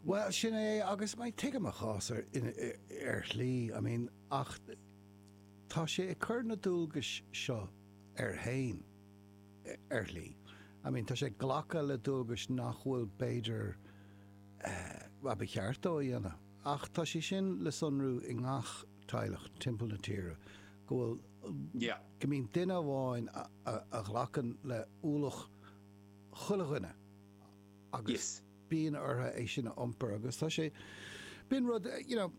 Bhuel, sin é agus mar tuigim a chás ar shlí, I mean, ach tá sé ag cur na dualgais seo air fhéin ar shlí, I mean tá sé ag glacadh le dualgais nach bhfuil b'fhéidir eh, ba cheart dó a dhéanamh ach tá sé sin le sonrú i ngach teaghlach timpeall na tíre go bhfuil, yeah, go mbíonn duine amháin a ghlacann le ualach chuile dhuine agus. Yes. bíonn ortha é sin a iompar agus tá sé, b'in rud, you know,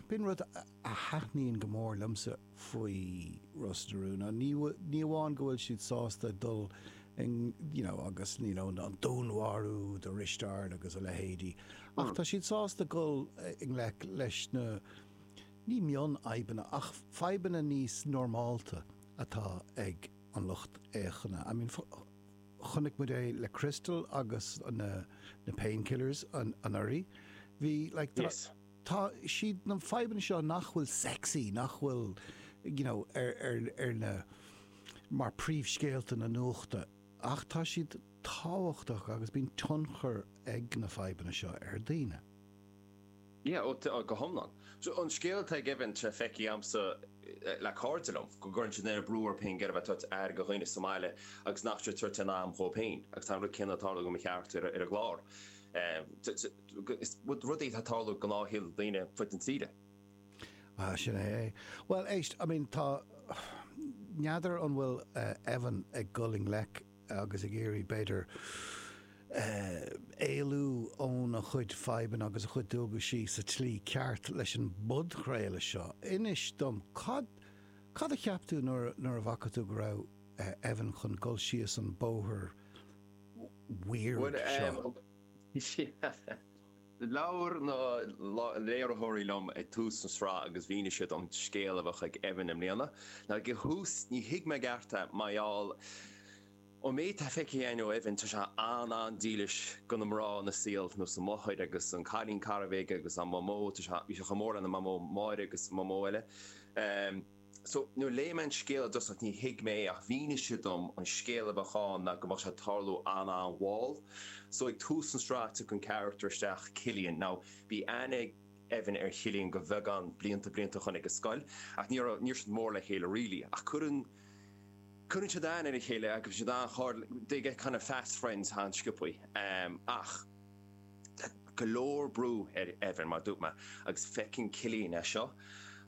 b'in rud a thaitníonn go mór liomsa faoi Ros na Rún, ná ní, ní amháin go bhfuil siad sásta dul i, you know, agus, you know, an dúnmharú de Risteárd agus a leithéidí, ach tá siad sásta dul i ngleic leis na, ní mion-fhadhbanna, ach fadhbanna níos normálta atá ag an lucht fhéachana. I mean, Chonaic muid é le Crystal agus na Painkillers anuraidh. Bhí, like, tá siad na fadhbanna seo nach bhfuil sexy, nach bhfuil, you know, ar na, mar príomhscéalta na nuachta ach tá siad tábhachtach agus bíonn tionchar ag na fadhbanna seo ar daoine. Yeah, oh, tá, go hiomlán. So, an scéal atá ag Evan tá sé feicthe agamsa le cairde liom, go gcuireann siad an-bhrú orthu féin go mbeidh siad ag tabhairt aire do dhaoine sa mbaile agus nach bhfuil siad ag tabhairt aon am dhóib féin agus tá an rud céanna ag tarlú do mo charachtar ar an gclár. Is rud é atá ag tarlú i gnáthshaol daoine ar fud na tíre. Ah, sin é é. Bhuel, éist, I mean, tá, n'fheadar an bhfuil Evan ag dul i ngleic. agus ag iarraidh, b'fhéidir, éalú óna chuid fadhbanna agus a chuid dualgaisí sa tslí ceart leis an bpodchraoladh seo. Inis dom, cad, cad a cheap tú nuair, nuair a bhfaca tú go raibh Evan chun dul síos an bóthar weird seo? Bhuel, eh, Labhair na léiritheoirí liom ag tús an sraith agus mhínigh siad dom an scéal a bheadh ag Evan i mbliana. Ag an thús ní thuig mé i gceart é mar gheall ón méid atá feicthe again ó Evan tá sé an-an-dílis do na mná ina shaol ar nós a mháthair agus an cailín cara a bhí aige agus a mhamó tá sé bhí sé chomh mór lena mhamó Máire agus a mhamó eile. So, nuair léigh mé an scéal i dtosach ní thuig mé é ach mhínigh siad dom an scéal a bheadh ann ná go mbeadh sé ag tarlú an-an-mhall. So, ag tús an sraith tiocfaidh an carachtar isteach, Cillian. Now, bhí aithne ag Evan ar Chillian le beagán blianta, blianta ó shin ag an scoil ach ní raibh, ní raibh siad mór le chéile really ach cuireann, cuireann siad aithne ar a chéile agus bíonn siad an-chairdiúil, they get kind of fast friends an-sciobtha. Ach. Tá go leor brú ar Evan, mar dúirt mé, agus feiceann Cillian é seo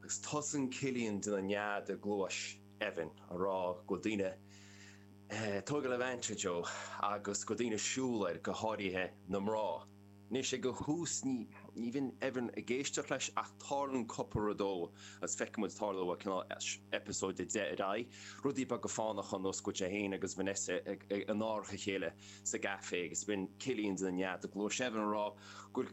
agus tosaíonn Cillian ag déanamh nead i gcluais Evan a rá go bhfuil daoine ag tógáil advantage dó agus go bhfuil daoine siúl air, go háirithe na mná. Anois ag an tús ní bhíonn Evan ag éisteacht leis ach tarlaionn cúpla rud dó agus feiceann muid tarlú ó cineál eipeasóid a deich ar aghaidh, rudaí beaga fánacha ar nós go bhfuil sé féin agus Vanessa in árach a chéile. sa gcafé agus bíonn Cillian ag déanamh nead i gcluais Evan a rá gur,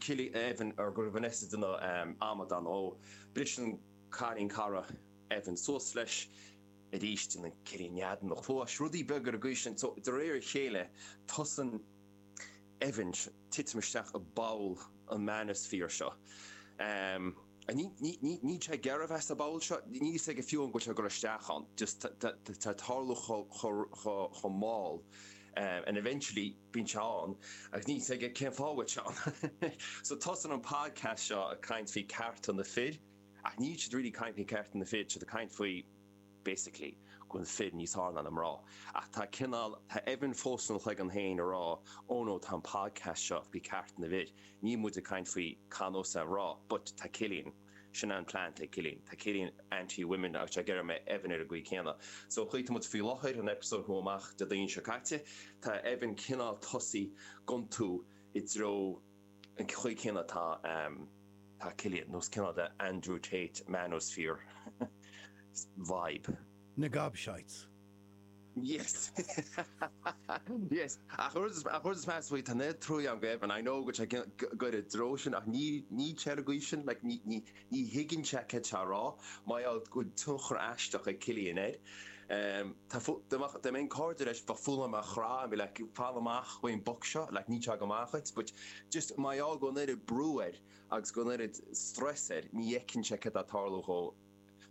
go raibh Vanessa ag déanamh amadán dó. Bris an cailín cara Evan suas leis arís déanann Cillian nead ina chluais, rudaí beaga ar an gcaoi sin. So, de réir a chéile tosaíonn Evan titim isteach i bpoll an manosphere seo. Níl sé ag iarraidh a bheith sa bpoll seo. Níl fhios aige fiú an bhfuil sé ag goil isteach ann. Just tá ag tarlú chomh mall and eventually bíonn sé ann agus níl fhios aige cén fáth a bhfuil sé ann. So tosaíonn an podcast seo ag caint faoi cearta na fir ach níl siad really ag caint faoi cearta na fir, tá siad ag caint faoi. basically, go bhfuil fir níos fearr ná mná. Ach tá cineál, tá Evan fós ina chloigeann féin a rá, oh no, tá an podcast seo faoi cearta na bhfir, níl muid ag caint faoi cá nós a rá, but tá Cillian, sin an plean atá ag Cillian, tá Cillian anti women agus tá ag iarraidh go mbeidh Evan ar an gcaoi chéanna. So an chaoi atá muid faoi láthair, an eipeasóid a chuaigh amach Déardaoin seo caite, tá Evan cineál tosaithe ag iontú i dtreo, An chaoi chéanna atá Cillian, nós cineál the Andrew Tate Manosphere vibe. Na gobshites. Yes! Yes! Ach an rud is measa faoi, tá neart truaí agam do Evan, I know go bhfuil sé ag goil i dtreo sin ach níl sé ar an gcaoi sin, like ní, ní, Ní thuigeann sé céard atá a rá. Mar gheall go bhfuil tionchar aisteach ag Cillian air. Tá fo, dá mbeadh, dá mbeinn cairde leis ba mhaith liom é a chraitheadh and be like fan amach ón mboc seo, like níl sé go maith dhuit but just mar gheall go bhfuil an oiread brú air agus an oiread strus air ní fheiceann sé céard atá ag tarlú dhó.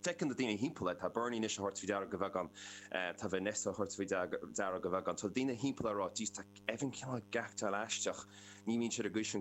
Feiceann na daoine timpeall air, tá Bernie anois a thabhairt faoi deara go beagán, tá Vanessa a thabhairt faoi deara go beagán, tá daoine timpeall air a rá jeez tá Evan cineál ag actáil aisteach, ní bhíonn sé ar an gcaoi sin